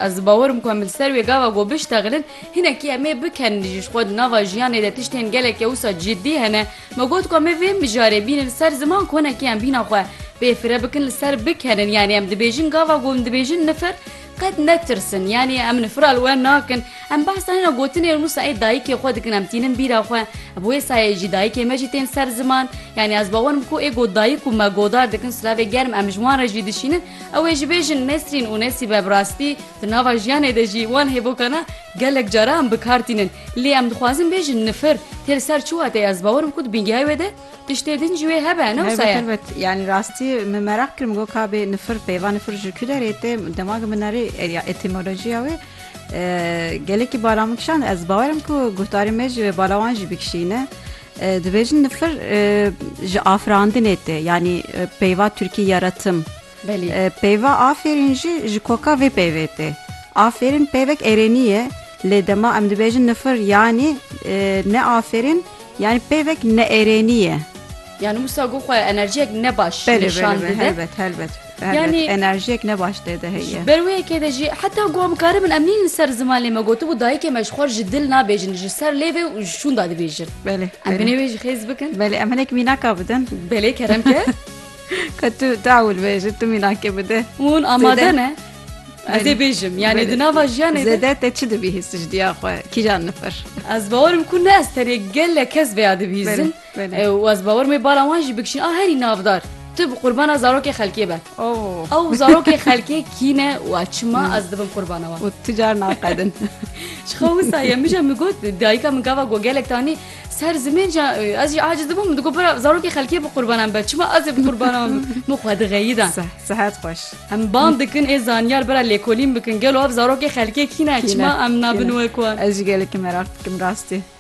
Ez di bawer im ku em li ser wê gava ku biştexilin, hinekî em ê bikin. Ji xwe di nava jiyanê de tiştên gelekî ewsa ciddî hene. Me got ku em ê vê mijarê bînin li ser ziman ku hinekî em bîna xwe pê fire bikin li ser bikenin. Yanî em dibêjin gava ku em dibêjin nifir qet netirsin. Yanî em nifira li we nakin. Em behsa hêna gotinê û nûsa ê dayikê xwe dikin. Em tînin bîra xwe. Bi wê sayeyê jî dayikê me jî tên ser ziman. Yanî ez bawer im ku ê ku dayik û me godar dikin silavê germ em ji wan re jî dişînin. Ew ê jibêjin Nesrîn û Nesîbe bi rastî di nava jiyanê de jî wan hêvokana gelek caran bi kar tînin. Lê em dixwazin bêjin nifir tê li ser çi wateyê ez bawer bikim ku di bingehê wê de tiştê din jî wê hebe ne wisa ye. Yanî rastî min meraq kir min got ka bê nifir peyva nifir ji kû derê tê dema ku min erê ya etîmolojiya wê gelekî bala min kişand ez bawer im ku guhdarê me jî wê bala wan jî bikişîne. Dibêjin nifir ji afirandinê tê yanî peyva Tirkî ya re tim. Peyva afêrîn jî ji koka vê peyvê tê. Afêrîn peyvek erênî ye lê dema em dibêjin nifir yanî ne afêrîn yanî peyvek neerênî ye. Yani wisa ku xwe enerjiyek ne baş nîşan dide. Helbet helbet. Yani enerjiyek ne baş tê de heye. Ber wê yekê de jî heta goa bikaribin em nîn li ser ziman lê me gotibû dayikê me ji xwe ji dil nabêjin ji ser lê vê û ji şûnda dibêjin. Belê. Em binê wê jî xêz bikin. Belê em hinek mînaka bidin. Belê kerem ke. Ka tu dawil bêjin tu mînakê bide. Hûn amade ne. Ez ê bêjim yani di nava jiyanê Zede te çi dibîhîst ji diya xwe kîjan nifir? Ez bawerim ku ne ez tenê gelek kes vêya dibîzin. Û ez bawer mê bala wan jî bikişîn a herî navdar. Tu bi qurbana zarokê xelkê be. Ew zarokê xelkê kî ne û a çima ez dibim qurbana wan. Û tu car naqedin. Ji xwe wisa ye min jî min got dayika min gava ku gelek tanî ser zimên jî ez jî aciz dibûm min digot bira zarokê xelkê bi qurbanan be çima ez ê bi qurbana wan bim. Min xwe dixeyidan. Sihet xweş. Em bang dikin ê zanyar bira lêkolîn bikin gelo ev zarokê xelkê kî ne çima em nabin wek wan. Ez jî gelekî meraq dikim rastî.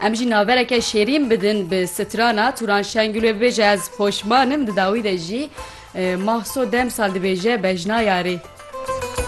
Em jî navereke şêrîn bidin bi strana Turan Şengül wê bibêje ez poşman im di dawî de jî Mahso demsal dibêje bejna yarê.